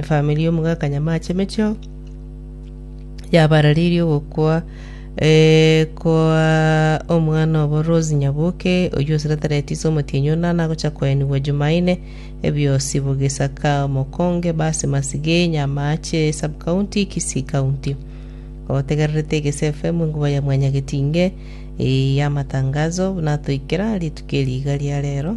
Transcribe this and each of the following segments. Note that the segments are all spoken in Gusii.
Efamiri y'omogaka Nyamache emechio yabararirie ogokwa eh, kwa omwana obo Rose Nyabuke, oyio osereterete ise omotienyi ona, nagocha koenigwa Jumaine, ebiosi bogisaka omokonge base Masige, Nyamache Sub-County, Kisii County. Otegererete Egese FM enkuba ya Mwanyagetinge eh, y'amatangazo, buna atoikera rituko eri iga ria rero.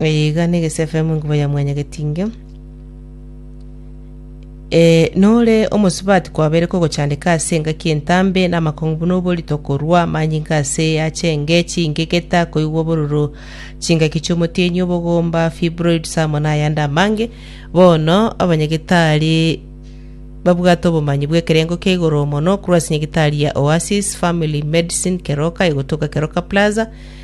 Eye iga negese FM enkuba ya mwanyagetinge. E, nore omosubati kwabere kogochandeka ase engaki entambe namakong'u buna oborito korwa amanyinga ase yache enge chingegeta koigwa obororo chingaki chiomotienyi obogomba fibroids amo nayande amange bono abanyagitari babwate obomanyi bw'ekerengo kia igoro mono korwa ase nyagitari ya Oasis Family Medicine Keroka egotoka Keroka Plaza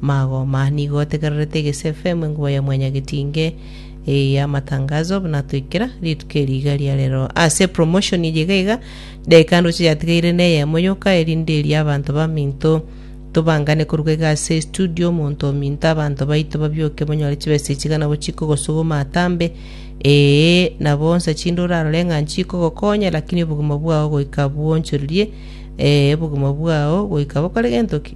Magoma, nigo ategererete egese efemu enkuba ya mwanyagetinge eye ya amatangazo buna atoikera rituko eri iga ria rero. Ase promotion eye iga iga, daika ndoche yatigaire neyemo yoka erinde eria abanto baminto tobangane koruga iga ase estudio omonto ominto abanto baito babioke banyore chibesa echi iga nabo chikogosuguma atambe ee nabo onsa chinde orarore ng'a nchikogokonya lakini obogima bwao goika bwonchoririe ee obogima bwao goika bokore gento ki